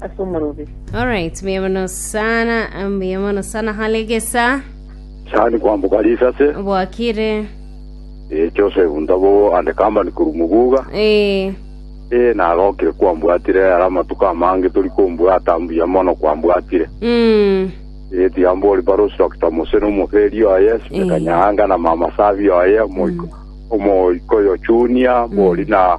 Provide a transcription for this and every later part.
ase omorobe. Alright, mbuya mono sana, mbuya mono sana Halegesa. Sani kwambuka risase Bwakire. eh, Joseph Ntabogo and company kuru Muguga Eh, eh, nagokire kwambwatire ara amatuko amange tori kombwata mbuya mono kwambwatire mm, eh, tiga mbori barosi Dr. Mose nomoferi oye Eh. Sikanyanga na mama Sabi oye omoiko omoiko yo Junior bori na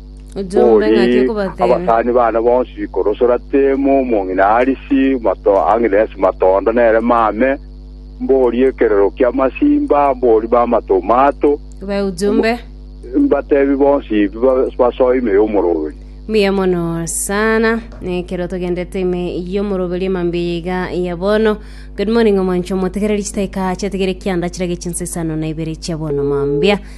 Bori abasani bane bonsi, korosora Temu, omong'ina Harisi, mato Ang'iresi, matondo nere mame, mbori ekerero ki'amasimba, mbori mama Tomato, mbatebi bonsi basoe ime y'omoroberi. Mbuya mono sana nekero togendete ime y'omoroberi emambia iga ya bono good morning omoncho motegereri chitaika chiategere kianda chirage chinsesano na ibere chia bono mambia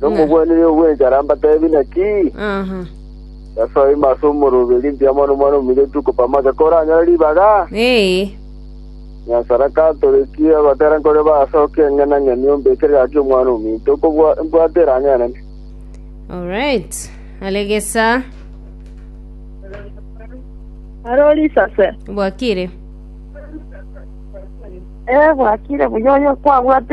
nomogwenereri obw'enchara mbateebie naki? Aha. Yeso aime ase omorobe rimpio amo nomwana omominyoto oko pamake koranyore ribaga? Ee. Nyansara katorekie agotera nkore baase oke eng'ena ng'eni ombekere gaki omwana ominto okobwa mbwate erang'enene. Alright. Are gesa. Are ori isase. Bwakire. Ee, bwakire buya oyo kwabwatire